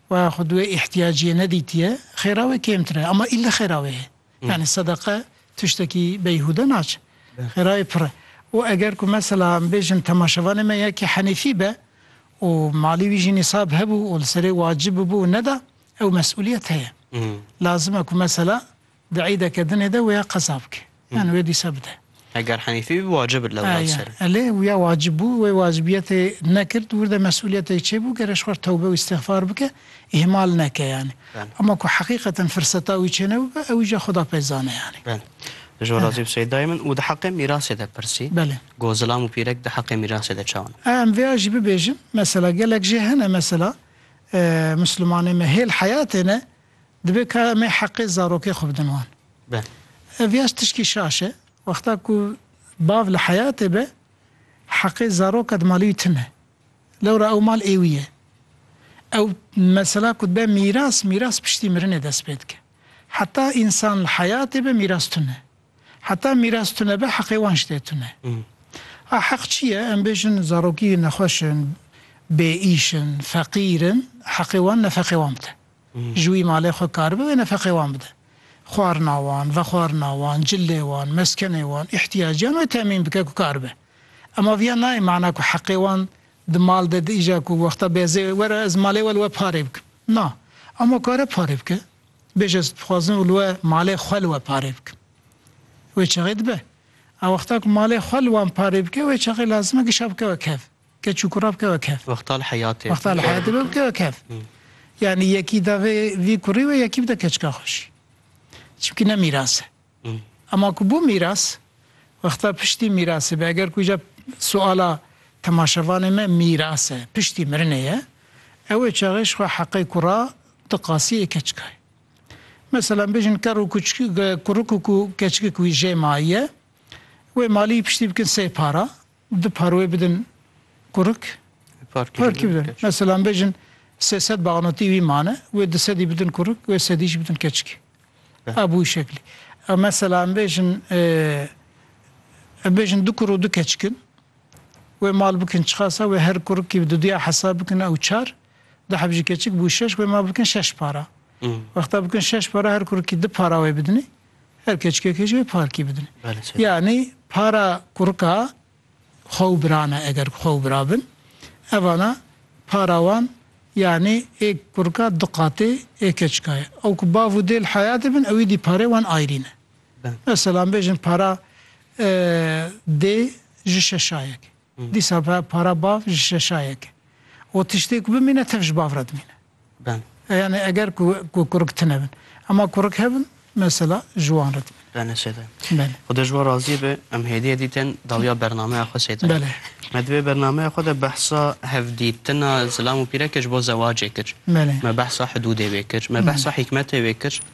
Wa xwe di wê îhtiyaciyê nedîtiye, xêra wê kêmtir e, ama îlle xêra wê ye. Yanî sedeqe tiştekî beyhûde naçe. Xêra wê pir e. Û eger ku mesela em bêjin temaşevanê me yekê henîfî be û malî wî jî nîsab hebû û li serê wacib bû û neda, ew mesûliyet heye. Lazim e ku mesela Di eydeke dinê de wêya qeza bike. Yan wê dîsa bide. Eger henîfî bî wacib e lewra li ser e. Aya, lê wêya wacib bû, wê wacibiyetê nekird, wir de mesûliyetê çêbû, gere ji xwe re tewbe û îstixfar bike, îhmal neke yanî. Belê. Ema ku heqîqeten firseta wî çênebûbe, ew îja Xweda pê dizane yanî. Belê. Ji wan razî bi Seydayê min. Û di heqê mîrasê de pirsî. Belê. Got zilam û pîrek di heqê mîrasê de çawa ne? Em vêya jî bibêjin, mesela gelek jê hene mesela, Muslimanê me hêl heyatê ne, Dibe ka em ê heqê zarokê xwe bidin wan. Ev yaş tişkî şaş e. Wexta ku bav li heyatê be, heqê zaroka di malê wî tim e. Lewra ew mal ê wî ye. Ew mesela ku dibe mîras, mîras piştî mirinê dest pê dike. Heta însan li heyatê be mîras tun e. Heta mîras tune be heqê wan ji dê tun e. A heq çi ye? Em bêjin zarokî nexweş in, bêîş in, feqîr in, heqê wan ne feqê wan bide. Ji wî malê xwe karibe wê nefeqê wan bide. Xwarina wan, vexwarina wan, cilê wan, meskenê wan, îhtîyaciyan wê temîn bike ku karibe. Ema viya nayê mana ku heqê wan di mal de di îja ku wexta bêzê were ez malê we li we parê bikim. Na. Ema kare parê bike. Bêje ez dixwazim û li we malê xwe li we parê bikim. Wê çaxê dibe. A wexta ku malê xwe li wan parê bike wê çaxê lazim e giş a bike we kev. Keç û kura bike wek hev. Wextal heyatê. Wextal heyatê be bike wek hev. Yanî yekî da vê vî kurî wê yekî bide keçika xwe jî. Çimkî ne mîras e. Ema ku bû mîras, wexta piştî mîrasê be. Eger ku îcar suala temaşevanê me mîras e, piştî mirinê ye, ew ê çaxê ji xwe heqê kura diqasî ê keçikayê. Meselan bêjin kerr û kuçik kurik û ku keçikik wî jê mayî ye, wê maliyî piştî bikin sey para, û du par wê bidin qurik par kî bidin mesela em bêjin sê sed banotî wî mane wê du sedî bidin qurik wê sedî jî bidin keçikî ev bû şeklî ew mesela em bêjin em bêjin du kur û du keçik in wê mal bikin çiqasa wê her kurikî di duya hesab bikin ew çar du heb jî keçik bû şeş wê mal bikin şeş para wexta bikin şeş para her kurikî du para wê bidinî Her keçikekê jî parkî bidin. Yanî para kurika xwe û biran e eger ku xwe û bira bin. Evana para wan yanî ê kurika du qatê ê keçika ye. Ew ku bav û dê li heyatê bin ewî dî parê wan ayrî ne. Mesela em bêjin para dê ji şeşayekê. Dîsa para bav ji şeşayek e û tiştê ku bimîne tev ji bav re dimîne. Yanî eger ku kurik tune bin. Ema kurik hebin mesela ji wan re dimîne. Bene seyda. Bele. Xuda ji wan razî be. Em hêdîye dî tên dawiya bernameya xwe seyda. Bele. Me di vê bernameya xwe de behsa hevdîtina zilam û pîreke ji bo zewacê kir. Bele. Me behsa hidûdê wê kir. Me behsa hîkmetê wê kir.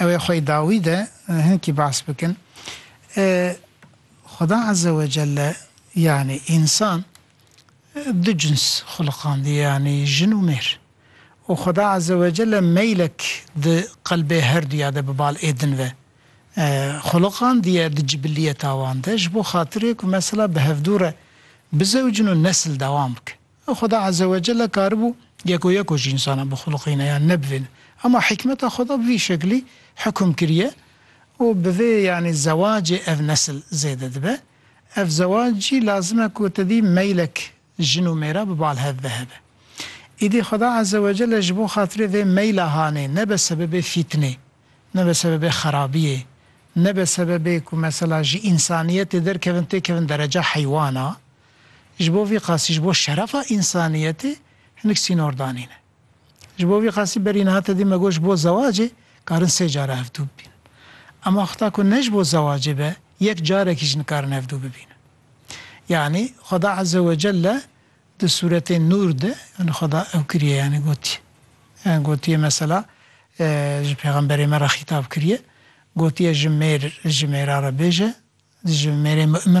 Ew ê xwe dawî de hinkî behs bikin. Xuda Ezze ve Celle yanî însan du cins xiliqandiye yanî jin û mêr. Û Xuda Ezze ve Celle meylek di qelbê her duya de bi bal ê din ve xiliqandiye di cibilliyeta wan de ji bo xatirê ku mesela bi hevdû re bizewicin û nesil dewam bike. Xweda Ezzewecelle karibû yek û yek û ji însanan bixulixîne yan ne bi vê ne. Ema hîkmeta Xweda bi vî şeklî hukm kiriye û bi vê yanî zewacê ev nesil zêde dibe. Ev zewac jî lazim e ku tedî meylek jin û mêra bi bal hev ve hebe. Îdî Xweda Ezzewecelle ji bo xatirê vê meyla hanê nebe sebebê fîtinê, nebe sebebê xerabiyê, nebe sebebê ku mesela ji însaniyetê derkevin têkevin dereca heywana, Ji bo vî qasî ji bo şerefa însaniyetê hinek sînor danîne. Ji bo vî qasî berî niha te dî me got ji bo zewacê karin sê care hevdû bibînin. Ema heta ku ne ji bo zewacê be yek carekî jî nikarin hevdû bibînin. Yanî Xweda Eze we Celle di sûretê Nûr de yanî Xweda ew kiriye yanî gotiye. Yanî gotiye mesela ji pêxemberê me re xîtab kiriye gotiye ji mêr ji mêra re bêje ji mêrê mu'min